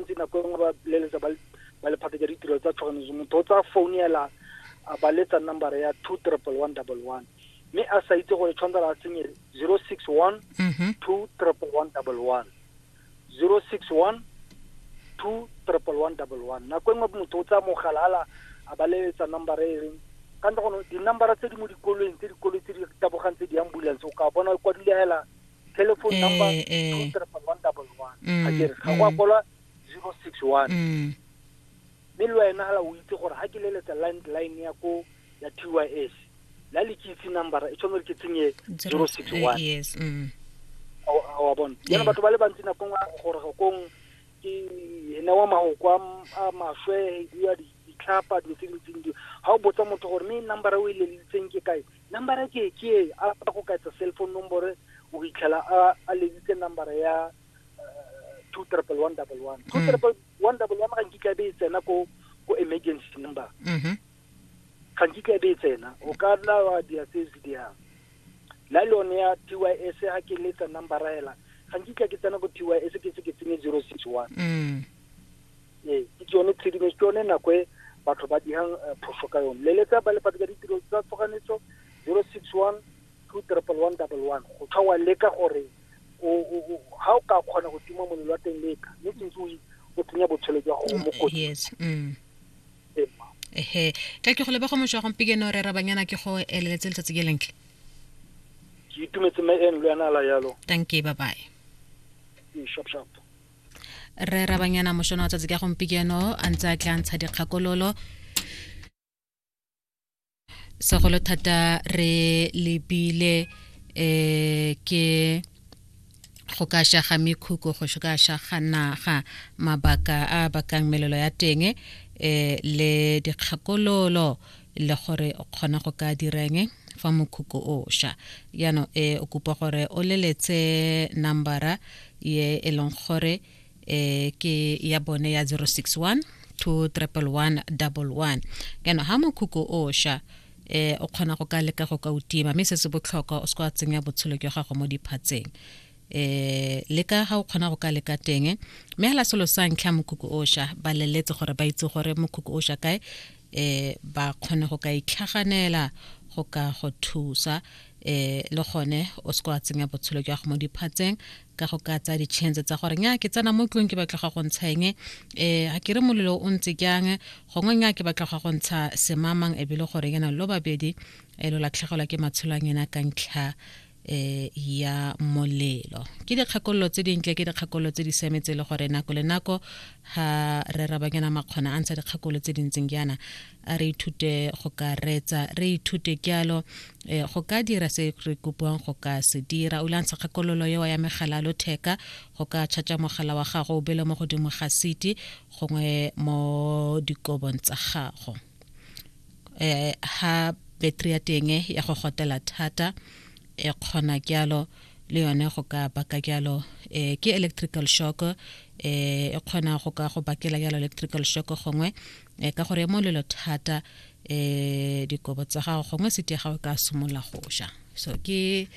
ntse nako e nngwe ba leletsa ba lephata ja ditiro tsa tshoganyetso motho o tsaya phone ela a ba letsa number ya two triple one double one mme a sa itse gore tshwanetse a tsenye zero six one mm-hmm. two triple one double one zero six one two triple one double one nako e nngwe motho o tsaya mogala ala a ba leletsa number e reng ka ntle gono di-numbera tse di mo dikolweng tse dikoloi tse di tabogang tse di ambulance o ka bona kwadile hela telephone number eh, eh. two triple one double one mm, a kere ga go mm. kwalwa zero six one mm. mme le wena hala o itse gore ga ke leletsa landline ya ko ya t y s la le ke itse number e tshwanetse ke tsenye zero six eh, one yes wa bona yana batho ba le bantsi nakong a gore gakong ke ene wa magoko a maswe ya ditlhapa dilo tse dintseng di ga o botsa motho gore mme number o e lelitseng ke kae Nambara ke ke e a ba go ka etsa cell phone nombore o fitlhela a a leditse nambara ya two triple one double one two mm. triple one double one ga nkitla be e tsena ko ko emergency number mm-hmm. ga nkitla be e tsena o ka nna wa dia se se dia la lone ya TYS ha ke letsa number hela ga nkitla ke tsena ko TYS ke se ke tsenye 061 mm Ee, ke tsone tshedimosetso, ke yone nako e batho ba dirang eh, phoso ka yone. Leletsa ba lefatshe ka ditiro tsa tshoganyetso 061 21111 go tswa wa leka gore o- o- o- ha o ka kgona go tima molelo wa teng leka mme ke ntse o i- o tsenya botshelo jwa gago mo kotsing yes mm. Ee, mma. ehe ka ke go leba go mošwa gompikeno re rabanyana ke go eleletse letsatsi ke lentle ke itumetse mme eno le yana la yalo thank you bye bye Ee, shop shop rre rabanyana mošono wa tsatsi ka gompikeno a ntse a tla ntsha dikgakololo segolo thata re lebile um ke go ka shaga mekhuko go ka shaga naga mabaka a bakang melelo ya teng um le dikgakololo um le gore o kgona go ka direng fa mokhukhu o sha yano e o kopa gore o leletse nambara ye e leng gore e ke ya bone ya 061 21111 kana ha mokhukhu o sha eh o kgona go ka leka go ka utima mme se se botlhokwa o se kwa tsenya botshelo jwa gago mo diphatseng eh le ka ga o kgona go ka leka teng mme hela selo sa ntlha mokhukhu osha ba leletse gore ba itse gore mokhukhu osha kae eh ba kgone go ka itlhaganela go ka go thusa eh le gone o se kwa tsenya botshelo jwa go mo diphatseng ka go ka tsaya ditšhentse tsa gore nya ke tsena mo tlong ke batla ga go ntsheng eh a ke re molelo o ntse jang gongwe nya ke batla ga go ntsha semamang e bile gore yana lo babedi e eh, lo latlhegelwa ke matshelo a ngena ka ntlha eh ya molelo ke dikgakololo tse dintle ke dikgakololo tse di siametse le gore nako le nako ha re rabanyana makgona a ntsha dikgakololo tse dintseng jaana a re ithute go ka retsa re ithute kyalo eh, go ka dira se re kopiwang go ka se dira o lantsha kgakololo eo ya megala lo theka go ka tšhatša mogala wa gago o bele mo godimo ga siti gongwe mo dikobong tsa gago eh, ha battery ya teng ya go gotela thata e kgona kyalo le yone go ka baka kyalo eh, ke electrical shock eh, e kgona go ka go bakela kyalo electrical shock gongwe eh, ka gore mo lelo thata eh, dikobo tsa gago gongwe sete ya gago ka simolola go sha so ke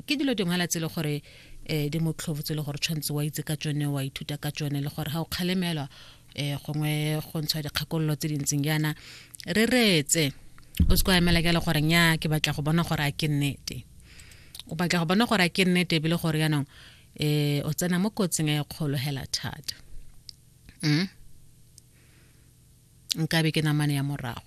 ke dilo dingwe la tsele gore eh di motlhobo tsele gore tshwantse wa itse ka tsone wa ithuta ka tsone le gore ga o kgalemelwa eh gongwe go ntshwa dikgakololo tse dintseng jaana re reetse o se kwa emela ke le gore nya ke batla go bona gore a ke nnete o batla go bona gore a ke nnete ebile gore yaanong eh o tsena mo kotsing e kgolo hela thata mm nkabe ke namane ya morago